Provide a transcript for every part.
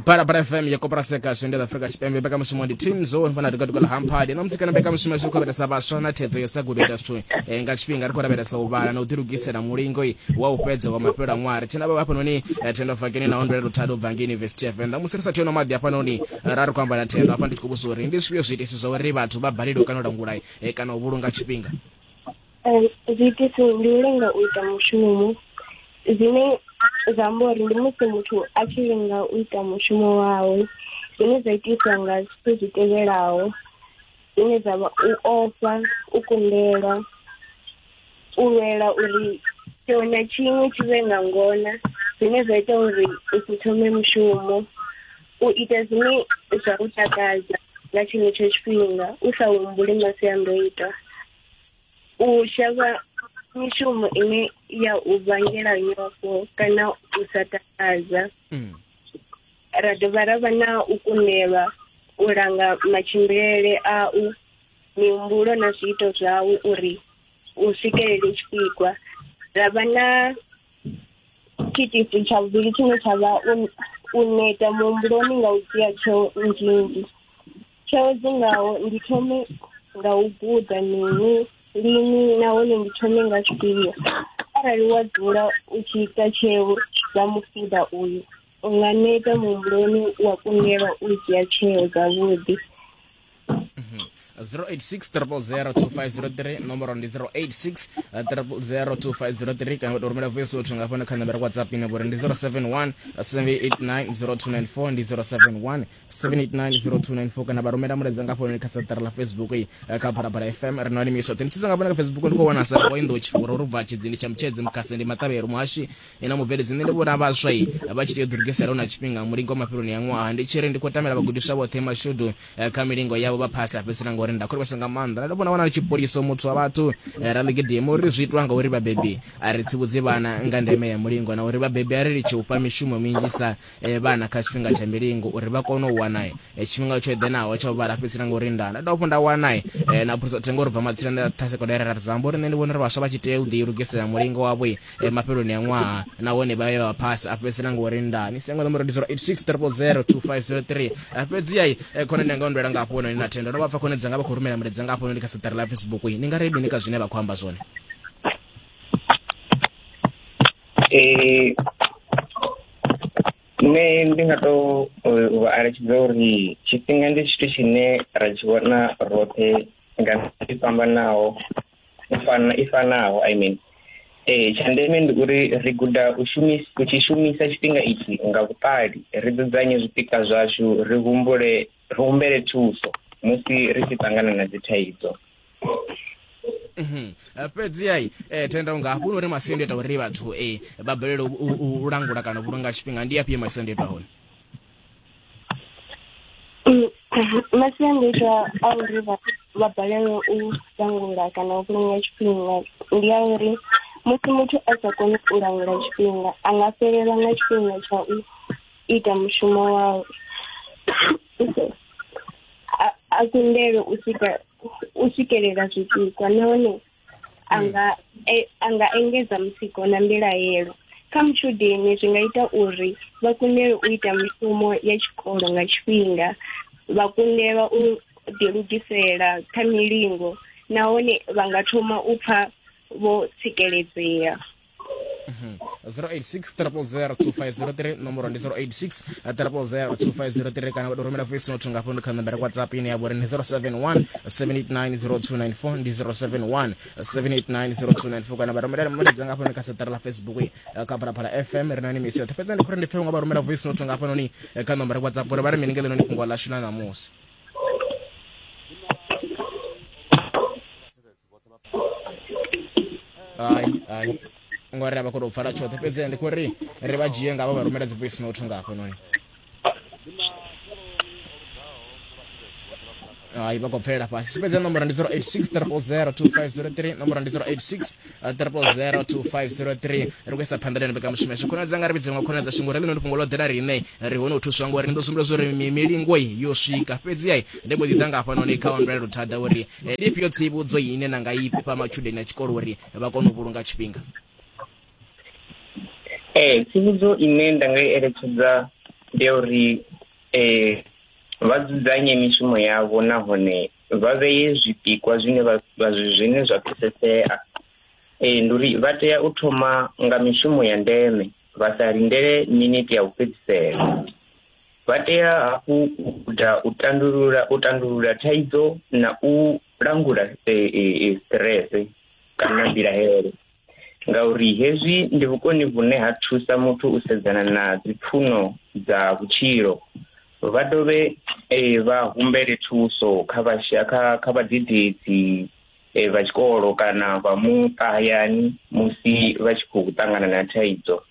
parapara fm ya kopera seka zwendela afrika tshipembe mbekamishumo ndi team zo vhona ri katukala hamphadi na musikana mbekamishumo zwi khou lavhelesa vhaswa na thedzo yo sa gudo ita zwithu eh, nga tshifhinga ri khou lavhelesa u vhala na u ḓilugisela mulingo i wa u fhedza wa mafhelo a ṅwaha ri tshena vha hafhanoni eh, thendo fakeni na ondwela luthado u bva ngei university ya venḓa musi ri sa theno maḓi hafhanoni ra ri khou amba na thendo hafha ndi tshi khou vhusa uri ndi zwifhio zwiitisi zwa uri vhathu vha balelwe kana u langula eh, kana u vhulunga tshifhinga zwiitisi ndi u lenga u ita mushumo zwine zwa amba uri ndi musi muthu a tshi lenga u ita mushumo wawe zwine zwa itiswa nga zwithu zwi tevhelaho zwine zwa vha u ofha u kundelwa u lwela uri tshiṅwe na tshiṅwe tshi vhe nga ngona zwine zwa ita uri u si thome mushumo u ita zwine zwa u takadza nga tshenetsho tshifhinga u sa humbuli masiandoitwa u shavha mishumo ine ya u vhangela nyofho kana u sa takadza mm. ra dovha ra vha na u kundelwa u langa matshimbilele au mihumbulo na zwiito zwau uri u swikelele tshipikwa ra vha na tshiitisi tsha vhuvhili tshine tsha vha u neta muhumbuloni nga u dzhia tsheo nnzhinzhi tsheo dzi ngaho ndi thome nga u guda mini lini nahone ndi thome nga tshifhio arali wa dzula u tshi ita tsheo dza mufuda uyu u nga neta muhumbuloni wa kundelwa u dzhia tsheo dzavhuḓi 0860002503 nomboro ndi 0860002503 kana to rumela voice note nga fhano kha nambara whatsapp ine vhuri ndi 071 789 0294 ndi 071 7890294 kana vha rumela mulaedza nga founu kha saṱari ḽa facebook eh, kha phalaphala fm ri no limiswa teni tsisa nga vhone kha facebook ndi khou wana sa boindo tshifhura uri bva tshidzini tsha mutshedzi mukhase ndi maṱavhelo muhashi ina mubveledzi nṋe ndi vhona vhaswa i eh, vha tshi tea u ḓilugisela hu na tshifhinga mulingo wa mafheloni ya ṅwaha ndi tshi ri ndi khou tamela vhagudiswa vhoṱhe mashudu eh, kha milingo yavho vha phasi a fhedzisela ngauri nda khorivhesa nga maanḓa ndi vhona wana ri tshipoliso muthu wa vhathu ra ḽigidimo uri zwi itwa ngauri vhabebi a ri tsivhudzi vhana nga ndeme ya mulingo na uri vhabebi a ri litshi u fha mishumo minzhisa e, vhana kha tshifhinga tsha milingo uri vha kone u wana e, tshifhinga tsho eḓenaho tsha u vhala fhedzi na ngori nda nda dovha hafhu nda wana e, e, na phulusa thengo uri bva matsina nda tha sekondari ra dzamba uri nṋe ndi vhona uri vhaswa vha tshi tea u ḓi lugisela mulingo wavho e, e, mafheloni a ṅwaha nahone vha ye vha phasi a fhedzi na ngori nda ni sengo ṋomboro ndi 0860002503 fhedzi yai e, khona ndi anga ndoela nga hafho hone na thendo ndo vha pfa khone dzanga vha khou rumela mulaedza nga hafho hone ndi kha saṱari ḽa facebook ni nga ri mini ka zwine vha khou amba zwone nṋe ndi nga to vha eletshedza uri tshifhinga ndi tshithu tshine ra tshi vhona roṱhe nga i fhambanaho i fana i fanaho i mean ee tsha ndeme ndi uri ri guda u shumisa u tshi shumisa tshifhinga itshi nga vhuṱali ri dzudzanye zwipikwa zwashu ri humbule ri humbele thuso musi ri tshi ṱangana na dzithaidzo mhm. eh, fhedzi ai eh, tenda unga hafhu uri masiandoitwa uri vhathu e vha balelwe u langula kana u vhulunga tshifhinga ndi afhio masiandoitwa hone mm, masiandoitwa a uri vha balelwe u langula kana u vhulunga tshifhinga ndi a uri musi muthu a sa koni u langula tshifhinga a nga fhelelwa nga tshifhinga tsha u ita mushumo wawe a kundelwe u swika u swikelela zwipikwa nahone a hmm. nga e, a nga engedza mutsiko na mbilahelo kha mutshudeni zwi nga ita uri vha kundelwe u ita mushumo ya tshikolo nga tshifhinga vha kundelwa u ḓilugisela kha milingo nahone vha nga thoma u pfa vho tsikeledzea 0860002503 mhm. nomoro ndi 0860002503 kana vhato rumela voice note nga fhano kha nambara whatsapp ine ya vhori ndi 071 7890294 ndi 071 7890294 kana vha rumela mulaedza nga fhano kha saṱari la facebook eh, kha phalaphala fm ri na ni misi yoṱhe fhedza ndi khori ndi pfhe nga vha rumela voice note nga fhanoni eh, kha nambara whatsapp uri vha ri mini ngeleno ni fhungo ḽashu ḽa ṋamusi hai hai ngori a vha khou tou pfala tshoṱhe fhedzi ndi khou ri ri vha dzhie nga vha vha rumela dzi voice note nga hafhanoni hai vha khou bvelela fhasi sipedza nomboro ndi 0860002503 nomboro ndi 0860002503 ri kuisa phanḓa lene beka mushumo yashu khonadza nga ri vhidze nga khonadza shingo ri ḽino ndi fhungo ḽo ḓela riṋe ri hone u thuswa ngori ni ḓo sumbula zwo ri milingo yo swika fhedzi ai ndi mbo ḓi ḓa nga hafhanoni kha onrela luthada uri eh, ndi ifhio tsivhudzo ine na nga i fha matshudeni a tshikolo uri vha kone u vhulunga tshifhinga ee eh, tsivhudzo ine nda nga i eletshedza ndi ya uri um vha dzudzanye mishumo yavho nahone vha vheye zwipikwa zwine zwine zwa pfesesea ee ndi uri vha tea u thoma nga mishumo ya ndeme vha sa lindele miniti ya u fhedzisela Vha tea hafhu u guda u tandulula u tandulula thaidzo na u langula stress kana mbilahelo ngauri hezwi ndi vhukoni vhune ha thusa muthu u sedzana na dzipfuno dza vhutshilo vha dovhe vha humbele thuso kha vhasha kha kha vhadededzi vha tshikolo kana vha muṱa hayani musi vha tshi khou ṱangana na thaidzo.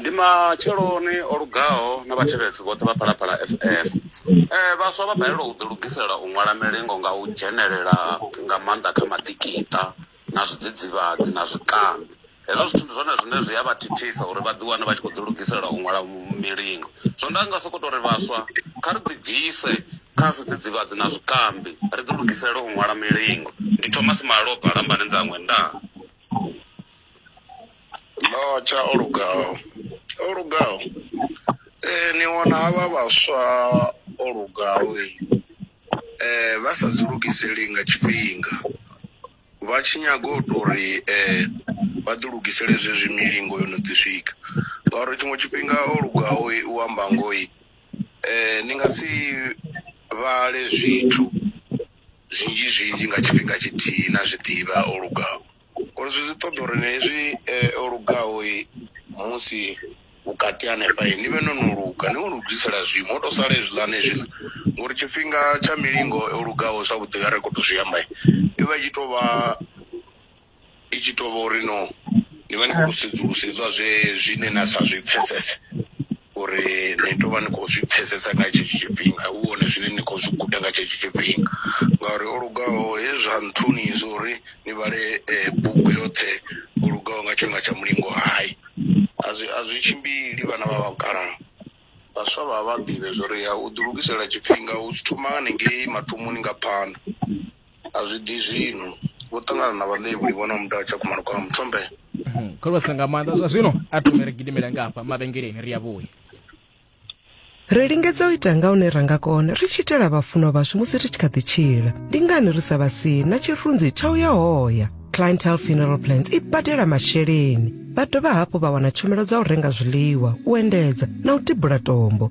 Ndi matsheloni o lugaho na vhathetshelesi vhoṱhe vha Phalaphala FM. Eh vhaswa vha balelwa u ḓi lugisela u ṅwala milingo nga u dzhenelela nga maanḓa kha maḓikiṱa na zwidzidzivhadzi na zwikambi. Hezwo zwithu ndi zwone zwine zwi a vha thithisa uri vha ḓi wane vha tshi khou ḓi lugisela u ṅwala milingo. Zwino nda nga soko tori vhaswa kha ri ḓi bvise kha zwidzidzivhadzi na zwikambi ri ḓi lugisele u ṅwala milingo. Ndi Thomas Malofha Lambani Nzangwe ndaa. Lotsha o lugaho o lugaho ee ni wana havha vhaswa o lugaho ee vha sa dzi lugiseli nga tshifhinga vha tshi nyaga u tou ri ee vha ḓi lugisele zwezwi milingo yo no ḓi swika ngauri tshiṅwe tshifhinga o lugaho u amba ngoho ee ni nga si vhale zwithu zwinzhi zwinzhi nga tshifhinga tshithihi na zwiḓivha o lugaho. Uri zwi zwi ṱoḓa uri ni hezwi eh, o lugaho eh, musi vhukati hanefha eh, ni vhe no no luga ni u lugisela zwiimo ho to sala hezwiḽani zwino ngori tshifhinga tsha milingo o lugaho zwavhuḓi nga ri khou to zwi amba eh, i vha i tshi tou vha i tshi tou vha uri no ni vha ni khou to sedzulusa hezwiḽa zwe zwine na sa zwi pfhesese uri ni tou vha ni khou zwi pfhesesa nga tshetsho tshifhinga hu hone zwine ni khou zwi guda nga tshetsho tshifhinga ngauri o lugaho hezwi zwa nthuni zwo uri ni vhale bugu yoṱhe o lugaho nga tshifhinga tsha mulingo hai a zwi a zwi tshimbili vhana vha vhakala vhaswa vha vha ḓivhe zwori ya u ḓi lugisela tshifhinga u zwi thoma haningei mathomoni nga phanḓa. A zwi ḓi zwino vho ṱangana na vhaḽevhuli vho na muda tsha khumalo kwa muthombe khulusa nga maanḓa zwa zwino a thome ri gidimele nga hafha mavhengeleni ri a vhuya Ri lingedza u ita nga hune ra nga kona ri tshi itela vhafunwa vhashu musi ri tshi kha ḓi tshila. Ndi ngani ri sa vha sii na tshirunzi tsha u ya hoya? Clientele Funeral Plans i badela masheleni. Vha dovha hafhu vha wana tshumelo dza u renga zwiḽiwa, u endedza na u tibula tombo.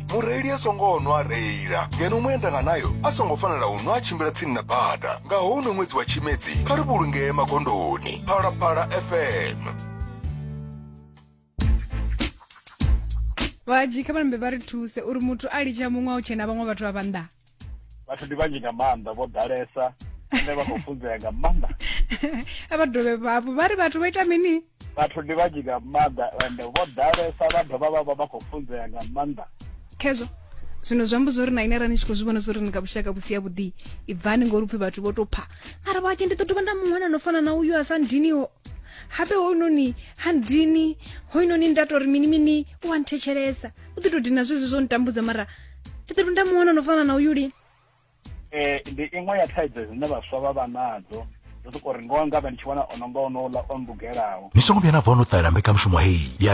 mureili a songo nwa a reila ngeno muendanganayo a songo fanela u nwa a tshimbila tsini na bada nga houno ṅwedzi wa tshimedzi kha ri vhulungee magondoni phalaphala fm vhaji kha vhalambe vha ri thuse uri muthu a litsha muṅwe a u tshena vhaṅwe vhathu vha vhanḓa vhathu ndi vhanzhi nga maanḓa vho ḓalesa ane vha khou funzea nga maanḓa a vha dovhe vhavho vha ri vhathu vha ita mini vhathu ndi vhanzhi nga maanḓa ende vho ḓalesa vha dovha vha vha vha khou funzea nga maanḓa khezwo zwino zwi amba zwori na ine arali ni tshi khou zwi vhona zwori ni nga vhushaka vhusi yavhuḓi i bvani ngori upfhi vhathu vho tou pha ara vhatshi ndi ḓo dovha nda muṅwana no fana na uyu a sa ndiniho habe hounoni ha ndini hoinoni nda tori mini mini u a nthetshelesa u ḓi tou dina zwezwi zwo ntambudza mara Peter ndamuona no fana na uyu lini eh ndi iṅwe ya thaidzo dzine vhaswa vha vha nadzo ndo sokou ri ngoho nga vha ndi tshi wana ono nga onouḽa o mbugelaho ni songo vhuya na bva o no ṱalela mbekanyamushumo heyi ya